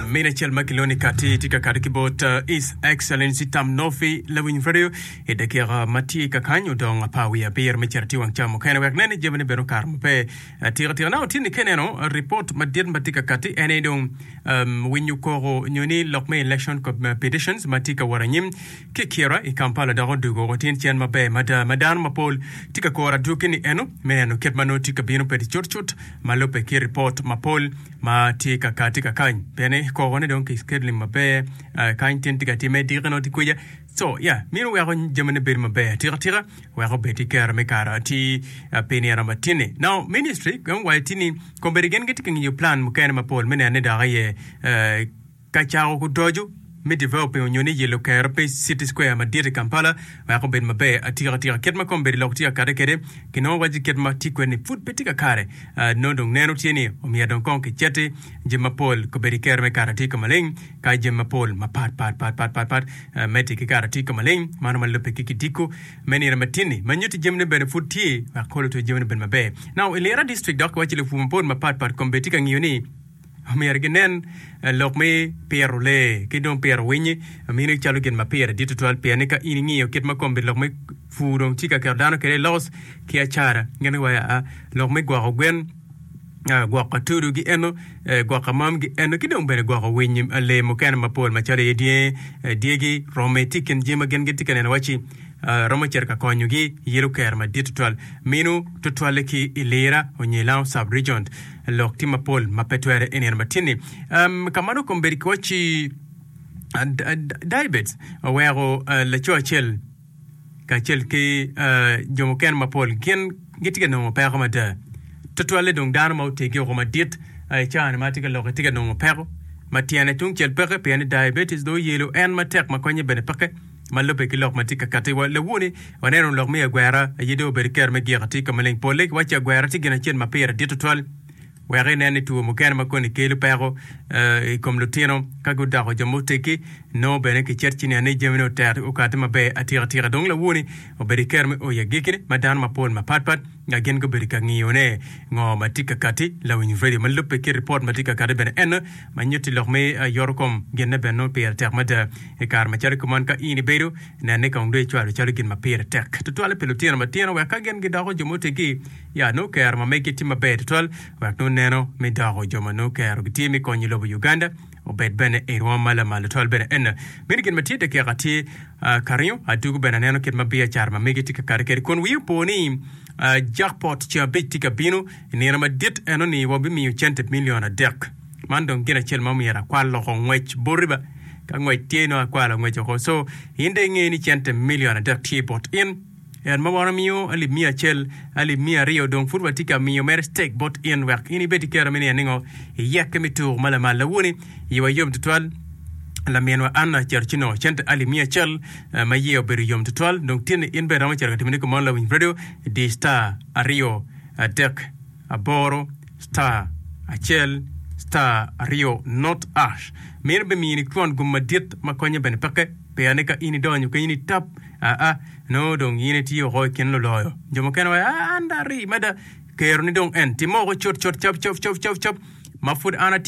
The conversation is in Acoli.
Min acel ma kilwongo ni Kati tye ka kado ki bot uh, His Excellency Tam Nofi lawiny radio i dakika ma tye ka kany odong apar wiye abiro me cito atir wang cam mukene wek nen ni jami ne bedo kare maber. Uh, Tika tika na otini ka ineno uh, ripot madit ma tye ka kati en aye dong um, winyo koko nyo ni lok me election co- uh, petitions ma tye ka wot anyim ki kira i Kampala dok odugo otin cen maber mada ma dano mapol tye ka koro adwogi ni eno me neno kit ma nongo tye ka bino pedi cutcut ma lubbe ki ripot mapol ma tye ka kati ka kany bene koko ne dong ki scheduling maber uh, kany tin tye ka timme diki no tye kweja so ya yeah, mino weko jami ne bedo maber tika tika weko bed ki kero me kara ti uh, pi nira matini now ministry gong wayo tini kombedi gen gitye ka ngiyo plan mukene mapol me nene dok iye uh, ka cako kudoco me developing onyo ni yelo kero pe city square madit i Kampala wek obed maber atika atika. Kit ma kombeddi lok tye ka kade kede kinongo waci kit ma tye kwede ni pud pe tye ka kare nongo dong neno tye ni omyero dong kong kiceti jami mapol kombeddi kero me kare atika maleng ka jami mapol mapat pat pat pat pat pat meti ki kare atika maleng mano ma lubbe ki kidiko me nino matinni ma nyuti jamine bene pud tye wek kolo to jamine bed maber now i lira district dok waci lupur mapol mapat pat kombeddi tye ka ngiyo ni Myero ginen lok me piro lee ki dong piro winyi mini calo gin ma pire dit tutwal, pien ni ka in ingiyo kit ma komgi lok me pur dong ci ka keto dano kwede i loss ki acara. Ngene wa aa lok me gwoko gwen, gwoko atudu gi eno, gwoko amam gi eno, ki dong bene gwoko winyi, lee mukene mapol macalo iye dyangi, dyegi, romme tye i kin jami ma gin gitye ka neno wacci romo cito ka konyogi yelo kero madit tutwal. Minu tutwalle ki i Lira onyo i Lang'o Sub-Region. Lok tye mapol ma pe twere i nino ma tye ni. Um, ka mano kombedi ki wacci Daibet oweko laco acel kacel ki jo mukene mapol gin gitye ka nongo peko mada. Tutwalle dong dano ma otegi woko madit i caa-ni ma tye ka lok tye ka nongo peko ma tyene tungcel peke pien ni diabetes dong oyelo en matek ma konye bene peke. ma lubbe ki lok ma tye ka katti wa. Lawoni, waneno ni lok me agwera aye dong obedo kero me giko atika maleng. Polle giwaco ni agwera tye gin acel ma pire dit tutwal wek inen ni two mukene ma koni kelo peko i kom lutino ka gudoko jo ma oteggi nongo bene kicet ci nen ni jamine oter okati maber atikatika. Dong lawoni obedo kero me oyo agikki ma dano mapol mapatpat nga gin gubedo ka ngiyone, ngo ma tye ka katti, lawiny radio ma lubbe ki ripot ma tye ka katti bene eno ma nyutti lok me yoto kom ginne bene nongo pire tek mada i kare macalo kuman ka in ibedo nenne kong dong icwalo calo gin ma pire tek tutwale pi lutino matino wek ka gin gidoko jo ma otegi ya nongo kero ma megi tye maber tutwal wek nongo neno me doko jo ma nongo kero gitye me konyo lobo Uganda Obed bene i rwom ma lamal tutwal bene en. Mini gin ma tye dakika tye ka ringo, adwogo bene aneno kit ma biacara ma megi tye ka kati kede, kun wiya opo ni jakpot ceng abic tye ka bino. I nino madit eno ni wabimiyo cente milion adek. Man dong gin acel ma omyero akwal loko ngwec boti ba. Ka ngwec tye nongo akwalo angwec oko. So, in dong ingeyo ni cente milion adek tye bot in. Yat ma wan wamiyo alip miya acel, alip miya aryo, dong pud watye ka miyo mere ctek bot in wek in ibed ki kero me niye ningo? Iyekke me tur ma lamal lawoni. Iyewa yom tutwal. Laminwa Anna cito ci nongo cente alip miya acel ma iye obedo yom tutwal. Dong tinni in bene iromo cito ka timone kit meno lawinj redio, di star aryo adek aboro star acel star aryo not ash. Meno bimiyo ni kwon gum madit ma konye bene peke. Peyane ka in idonyo kenyo ni tap Aa, nongo dong in itye woko i kin luloyo. Jo mukene waco, Aa, an da ari mada. Kero ni dong en. Timme woko cutcut, cap cap cap cap cap, ma pud an atye.